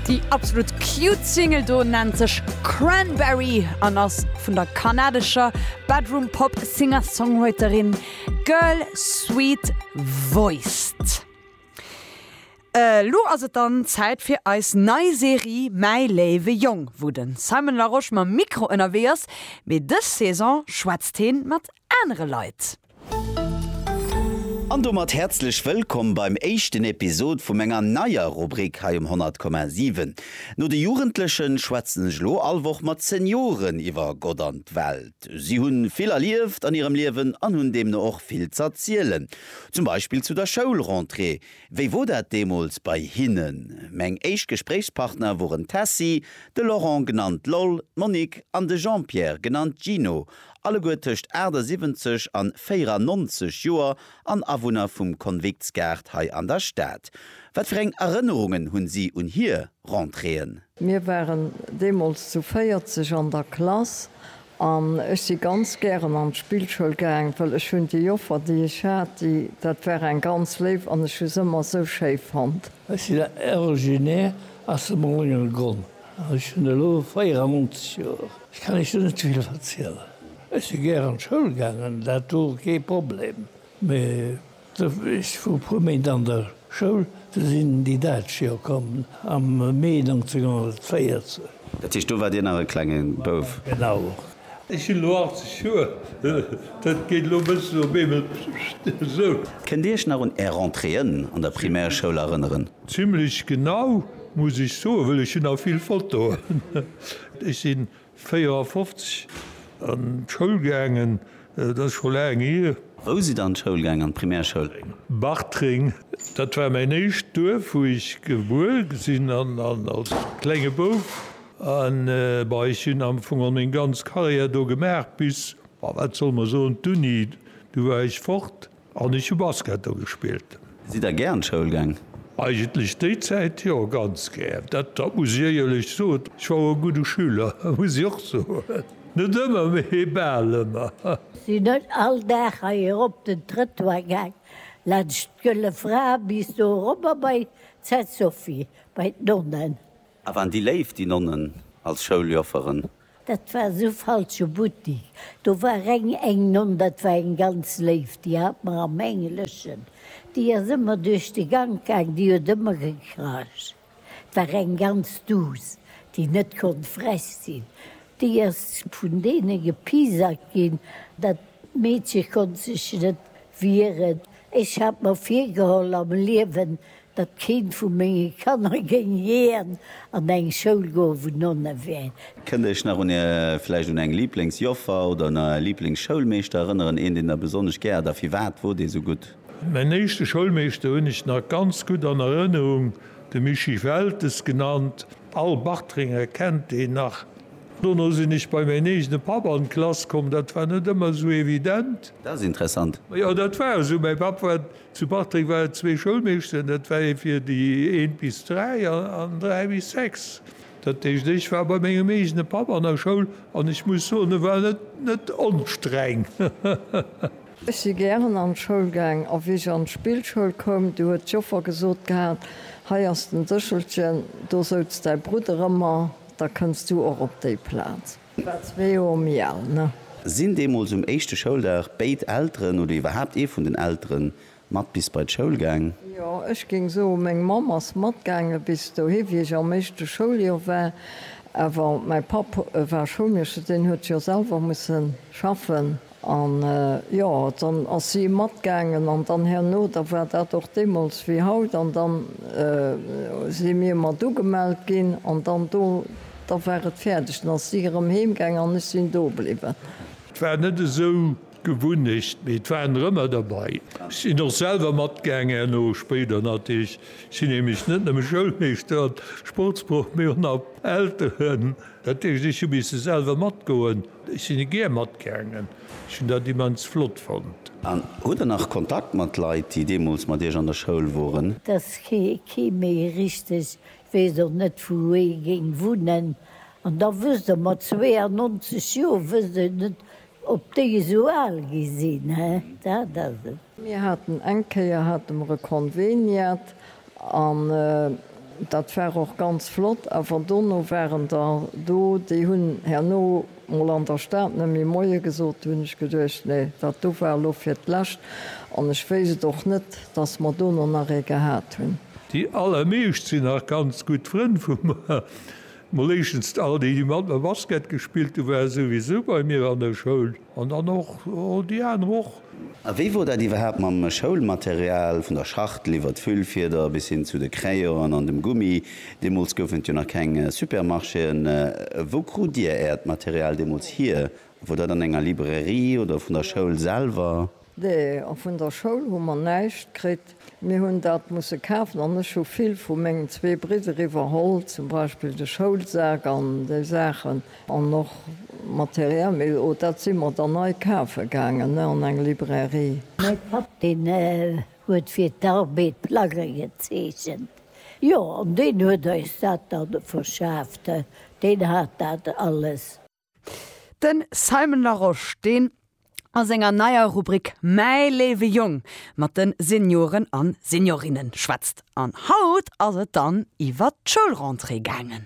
Déi absolut cute Single do nennt sech Cranberry an ass vun der kanadescher Bedroom-Pop Singer-Songwriterin Girl Sweet Voiced. Elo ass et dann Zäit fir eis nei Serie Mäi léiwe Jong, wou de Simon Larosche mam Mikro ënnerwee ass, mee dës Saison schwätzt heen mat anere Leit. An domat häerzlech wëllkomm beim éischten Episod vu menger neier Rubrik hei um 100,7. No de Jugendlechen schwätzen ech elo all Woch mat Senioren iwwer Gott an d'Welt. Si hunn vill erlieft an hirem Liewen an hunn deemno och vill z'erzielen. Zum Beispill zu der Schoulrentrée. Wéi wor dat deemools bei hinnen? Meng éischt Gespréichspartner woren d'Tessy, de Laurent, genannt Loll, d'Monique an de Jean-Pierre, genannt Gino, alleguer tëscht 78 an 94 Joer an Awunner vum Konviktsgaart hei an der Stad. Wat fir eng Erënnerungen hunn si un hier Rentréeën? Mir waren deemools zu 40 an der Klass an ech si ganz gären an d'Spillschoul gaang, well ech hunn déi Joffer, déi ech hat, déi, dat war eng ganz léif an ech hu se ëmmer esou schéi fonnt. Ech sinn originaire aus dem Rongelgronn. Ech hunn elo 94 Joer. Ech kann Iech do net vill verzielen. Ech si gär an d'Schoul gaangen, dat wor kee Problem. Mee ech wor e puer Méint an der Schoul, du sinn déi Däitsch jo komm am Mee 1914. Dat heescht, do waart Dir nach e klenge Bouf? Genau. Ech hunn elo 80 Joer, dat geet elo e bëssen op eemol esou. Kënnt Dir Iech nach un Är Rentréeën an der Primärschoul erënneren? Zimmlech genau, muss ech soen, well ech hunn nach vill Fotoen. Ech si 54 an d'Schoul gaangen, dat ass scho laang hier. Wou sidd Der an d'Schoul gaangen, an d'Primärschoul? Bartreng, dat war mäin éischt Duerf, wou ech gebuer sinn an als klenge Bouf. An, bah, ech hunn am Fong all meng ganz Carrière do gemaach bis, bah, wat soll mer soen, d'Uni. Du war ech fort an ech hu Basket do gespillt. Sidd Der gär an d'Schoul gaang? Eigentlech déi Zäit jo, ganz gär. Dat, dat muss ech éierlech soen. Ech war och e gudde Schüler, muss ech och soen. Net ëmmer, mee bal ëmmer. Sinn net all Dag hei erop den Trëttoir gaang, laanscht d'Gëlle Fra bis do erobber bei d'Sainte-Sophie, bei d'Nonnen. A waren déi léif, déi Nonnen als Schouljofferen? Dat war esou falsche Buttik. Do war reng eng Nonn, dat war eng ganz léif, déi hat mer am Engleschen, déi ass ëmmer duerch de Gank gaang, déi huet ëmmer gekracht. Et war eng ganz duuss, déi net konnt frech sinn. Déi ass vun deene gepiesackt ginn. Dat Meedche konnt sech net wieren. Ech hat mer virgeholl am Liewen, datt keent vu menge Kanner géing jiän an eng Schoul goen, wou Nonne wären. Kënnt Iech nach un Är, vläicht un eng Lieblingsjoffer oder un Är Lieblingsschoulmeeschter erënneren? Een, deen Der besonnesch gär hat a firwat wor dee sou gutt? Mäin éischte Schoulmeeschter hunn ech nach ganz gutt an Erënnerung, de Mischii Weltes genannt. All Bartrenger kennt deen nach. Dono sinn ech bei mäin eegene Papp an d'Klass komm, dat war net ëmmer sou evident. Dat ass interessant. Jo, dat war esou, mäi Papp war. Zu Bartreng war et zwee Schoulmeeschteren, dat war ee fir déi eent bis dräi an dräi bis sechs. Dat heescht, ech war bei mengem eegene Papp an der Schoul an ech muss soen, e war net onstreng. Ech si gären an d'Schoul gaang a wéi ech an d'Spillschoul koum, du huet d'Joffer gesot gehat, hei ass den Séchelchen, do souz däi Brudder ëmmer, da kënns du och op déi Plaz. War zwee Joer méi al, ne? Sinn deemools um éischte Schouldag béid Elteren oder iwwerhaapt ee vun den Eltere mat bis bei d'Schoul gaang? Jo, ech géing soen, meng Mamm ass matgaange bis dohi, wéi ech am éischte Schouljoer war. Awer mäi Papp war Schoulmeeschter, deen huet jo selwer musse schaffen. An, jo, dann ass si matgaangen, an dann herno, da war dat och deemools wéi haut, an dann si mir mat ugemellt ginn, an dann do, da war et fäerdeg, dann ass si erëm heemgaangen an ech sinn do bliwwen. Et war net esou d'Gewunnecht, mee et waren der ëmmer derbei. Ech sinn och selwer matgaangen herno, spéider natierlech. Ech sinn nämlech net nëmme Schoulmeeschter an Sportsproff, mee och nach Elteren. Dat heescht, ech hu misse selwer matgoen. Ech sinn e gär matgaangen. Ech hunn dat immens flott fonnt. An hutt der nach Kontakt mat Leit, déi deemools mat Iech an der Schoul woren? Dass kee méi richteg weess, och net wou ee géing wunnen. An da wësst Der, mat 92 Joer wësst Der net, ob déi esou al gi sinn, he? Dat ass et. Mir haten eng Kéier hate mer e Konveniat an dat war och ganz flott. Awer dono waren der do, déi hunn herno mol an der Stad net méi Moie gesot. Do hunn ech geduecht, nee, dat do war elo fir d'lescht. An ech wéisst et och net, dass mer dono nach ee gehat hunn. Déi allermeescht sinn nach ganz gutt Frënn vu mer. Mol éischtens all déi, déi mat mer Basket gespillt hunn, ware souwisou bei mir an der Schoul. An dann och déi aner och. A wéi wor dat iwwerhaapt mam Schoulmaterial, vun der Schachtel iwwert d'Füllfieder bis hin zu de Crayonen an dem Gummi? Deemools goufen et jo nach keng Supermarchéen. Wou krut Dir Äert Material deemools hier? Wor dat an enger Librairie oder vun der Schoul selwer? Nee, a vun der Schoul hu mer näischt kritt. Mir hunn dat musse kafen an ech hu vill vu mengen zwee Bridder iwwerholl, zum Beispill de Schoulsak an déi Saachen an och Material. Mee oh, dat si mer dann nei kafe gaangen an eng Librairie. Mäi Papp, deen huet fir d'Arbed Plagge gezeechent, jo, an deen huet eis dat da verschaaft, deen hat dat alles. Den Simon Larosche, deen a senger neier Rubrik Mäi léiwe Jong mat den Senioren an Seniorinnen schwätzt. An haut ass et dann iwwert d'Schoulrentrée gaangen.